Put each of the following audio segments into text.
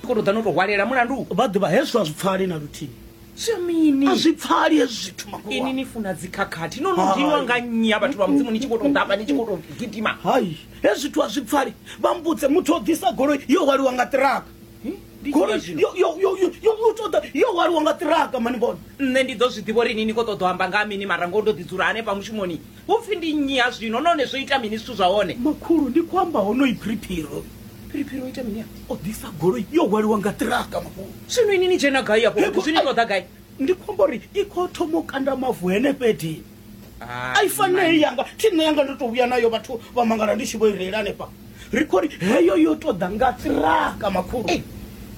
koro ḓa no to hwalela mulandu vha ḓivha hezwo a zwi pfali na luthihi a zwi pfali hezwi zwithu makulu ini ni funa dzikhakhathi no no dinwa nga nnyi ya vhathu vha mudzimu ni tshi khou tou ḓafha ni tshi khou tou gidima hai hezwi zwithu a zwi pfali vha mbudze muthu o ḓisa goloi yo hwaliwa nga ṱiraka goloi yo- yo- yo- yo- yo- yo ṱoḓa yo hwaliwa nga ṱiraka mani bona nṋe ndi ḓo zwi ḓivha uri ini ni khou ṱoḓa u amba nga ha mini mara ngoho ndo ḓi dzula hanefha mushumoni Hu pfi ndi nnyi ha zwino nahone zwo ita mini zwithu zwa hone? Makhulu, ndi khou amba honoyi Phiriphiri. Phiriphiri o ita mini afha? O ḓisa goloi yo hwaliwa nga ṱiraka makhulu. Zwino ini ni dzhena gai afho fhethu? Zwi ni ṱoḓa gai? Ndi khou amba uri i khou thoma u kanda mavu henefha edini. A i fani na heyi yanga, thi nṋe yanga ndo tou vhuya nayo vhathu vha mangala ndi tshi vho i reila hanefha. ri khou ri heyo yo tou ḓa nga ṱiraka makhulu Ei,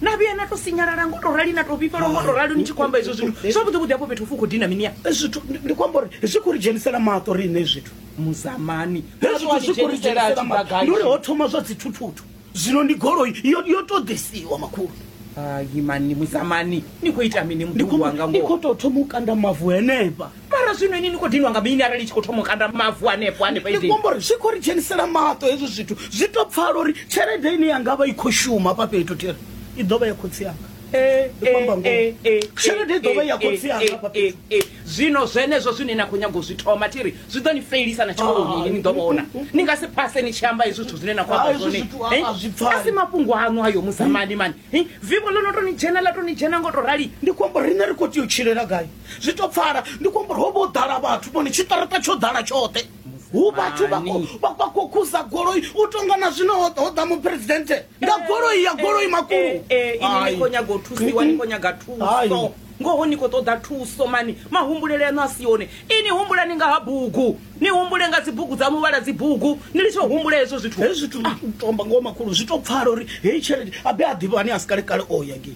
na vhuya na to sinyalala ngo to rali na to vhifhelwa ngo to rali ni tshi khou amba hezwo zwithu zwavhuḓi vhuḓi hafho fhethu hu khou dina mini ya Eh, zwithu ndi- ndi khou amba uri zwi khou ri dzhenisela maṱo riṋe zwithu muzamani Hezwi wa Zwithu zwi khou ri dzhenisela dzhenisela maṱo. tshibagadzhi. ndi uri ho thoma zwa dzithuthutu zwino ndi goloi yo yo tou ḓisiwa makhulu hai mani muzamani ni khou ita mini ndi muḓulu wanga khou- ndi ngoho khou tou thoma u kanda mavu henefha mara zwino ini ni khou dinwa nga mini arali tshi khou thoma u kanda mavu hanefho hanefho ndi khombo uri zwi khou ri dzhenisela maṱo hezwo zwithu zwi to pfala uri tshelede ine yanga vha i khou shuma fha fhethu tere i ḓo vha ya khotsi yanga eh, eh, eh, tshelede i ḓo vha ya khotsi yanga fha fhethu zwino zwenezwo zwine na khou nyaga u zwi thoma thi ri zwi ḓo ni felisa na tshikoloni ni ḓo vhona ni nga si phase ni tshi amba hezwi zwithu zwine na khou amba zwone a si mafhungo aṋu ayo musamani mani vivo ḽo no to ni dzhena ḽa to ni dzhena ngo to rali ndi khombo riṋe ri khou tea u tshilela gai zwi to pfala ndi khou amba uri ho vha o ḓala vhathu vhone tshiṱaraṱa tsho ḓala tshoṱhe hu vhathu vha khou- vha vha khou khuza goloi u tonga na zwino ho ho ḓa muphuresidennde nga goloi ya goloi makulu Eh, eh, ini ni Ai. khou nyaga u thusiwa ni khou nyaga Ai. thuso ngoho ni khou ṱoḓa thuso mani mahumbulele aṋu a si one ini humbulani nga ha bugu ni humbule nga dzibugu dza muvhala dzibugu ni litsho humbule hezwo zwithu hezwi zwithu tomba ngoho makulu zwi to pfala uri heyi tshelede abe a ḓivhani a si kalekale o ya ngei